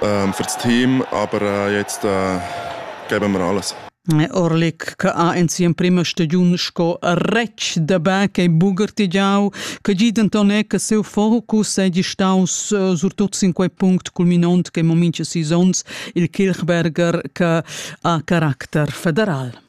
Für das Team, aber jetzt geben wir alles. Orlik che ha in sia prima stagiun sco retg da bè che buger tigiau, che gi Antonet che seu focus è staus eh, surtut sin quei punct culminont che moment che sisons il Kirchberger che ha caracter federal.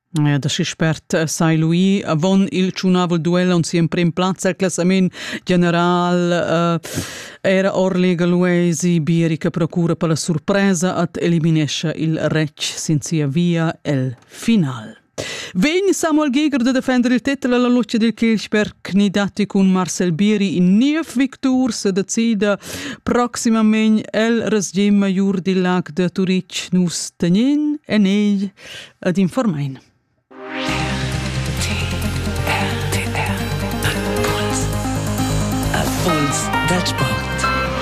Da schi spert sai lui avon il tschunavel duel on siu emprim plaz el classament general era Orlega Luesi Bieri che procura per la surpresa ad eliminescha il retg sin sia via el final. Vegn Samuel Giger de defender il titel alla luce del Kirchberg nidati cun Marcel Bieri in niev victur se decida proximament el resgim major di lac de Turic nus tenin en ei ed informain. Puls dal sport.